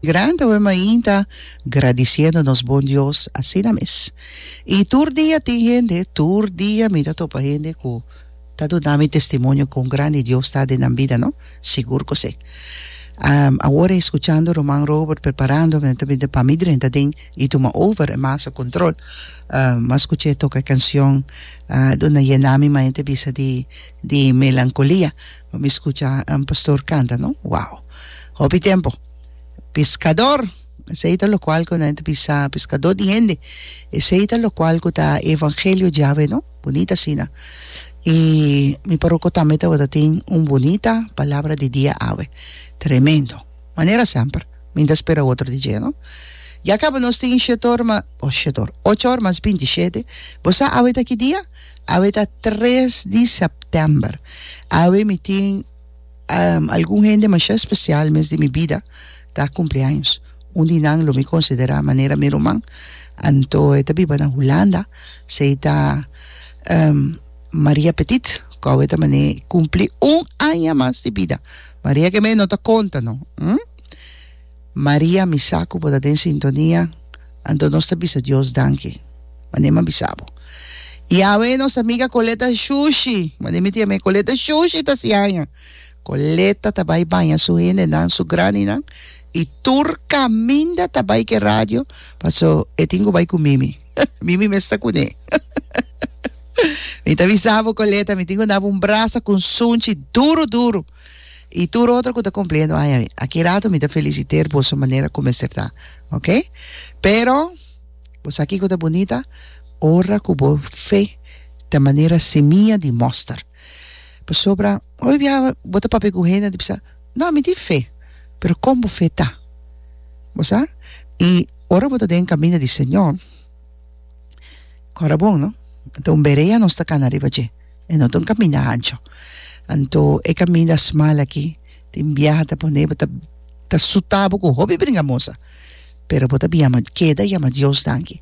Grandi awe mainta gradiciendo nos bon Dios asina mes. Y tur dia tin hende, tur dia mi ta topa hende cu ta duna mi testimonio con grandi Dios ta den nan bida no, sigur cu si. Awor escuchando ruman Robert preparando me ta bini pa mi drenta den y tuma over e masa control. Mas cu che toca e cancion duna yena mi mente bisa di di melancolia. Bo mi scucha un pastor canta no? Wow! Hopi tempo. Piscador! Esey ta locual cu nan ta bisa, piscador di hende. Esey ta locual cu ta evangelio djawe no? Bunita asina. Y mi parroco tambe tabata tin un bunita palabra di dia awe. Tremendo! Manera semper, mi ta spera otro di dje no. Ya caba nos tin shet or ma, oh shet or, ocho or mas binti shete. Bo sa awe ta ki dia? Awe ta tres di sèptèmber. Awe mi tin algun hende masha espesial mes di mi bida ta kumpleaños. Un di nan lo mi konsiderá manera mi ruman, anto e ta biba na Hulanda. Esei ta Maria Petit ku awe ta manera i kumpli un aña mas di bida. Maria ke mes no ta konta no. Maria, mi sa cu bo ta den sintonia, anto nos ta bisa Dios danki, mane mi a bisa bo. Yahweh, nos amiga Coletta Shushi, mane mi ta yama e Coletta Shushi ta siaña. Coletta ta bai baña su hendenan, su graninan, y tur caminda ta bai cu e radio, paso e tin cu bai cu Mimi. Mimi mes ta cune. Mi ta bisa bo, Coletta, mi tin cu na bo un brasa cu un sunchi duru duru. y tur otro cu ta cumpliendo aña ain. Aki rato mi ta feliciter boso manera cu mester ta, ok? Pero, bo sa kico ta bunita? Ora cu bo fe ta manera semia di moster. Pasobra hoy bia bo ta papia cu hende ta bisa, No, mi tin fe. Pero con bo fe ta? Bo sa? Y ora bo ta den camina di Señor, cora bon, no? Ta un berea nos ta cana riba dje. E no ta un kaminda ancho. Anto e kaminda smal aki tin biaha ta pone bo ta ta sutá bo ku hopi bringamosa. Pero bo ta bin yama keda yama Dios danki.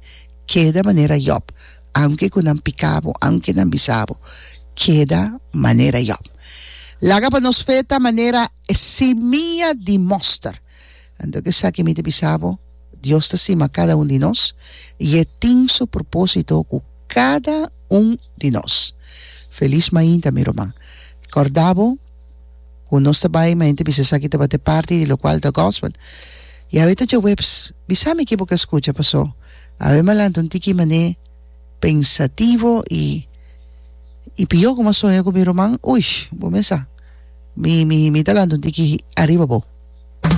Keda manera Yòb, aunke ku nan piká bo, aunke nan bisa bo, keda manera Yòb. Laga pa nos fe ta manera e simia di mòster. Anto ke esaki mi ta bisa bo, Dios ta stima kada un di nos i e tin su propósito ku kada un di nos. Felis mainta, mi ruman. Kòrda bo ku nos ta bai mainta bisa esaki tabata e parti di lokual ta gòspel. I awe ta djaweps. Bisa mi ke bo ka skucha, pasó awe mi a lanta un tiki manera pensativo i i pihó ku mi a soña ku mi ruman, uish, bo mesa mi mi ta lanta un tiki ariba bo.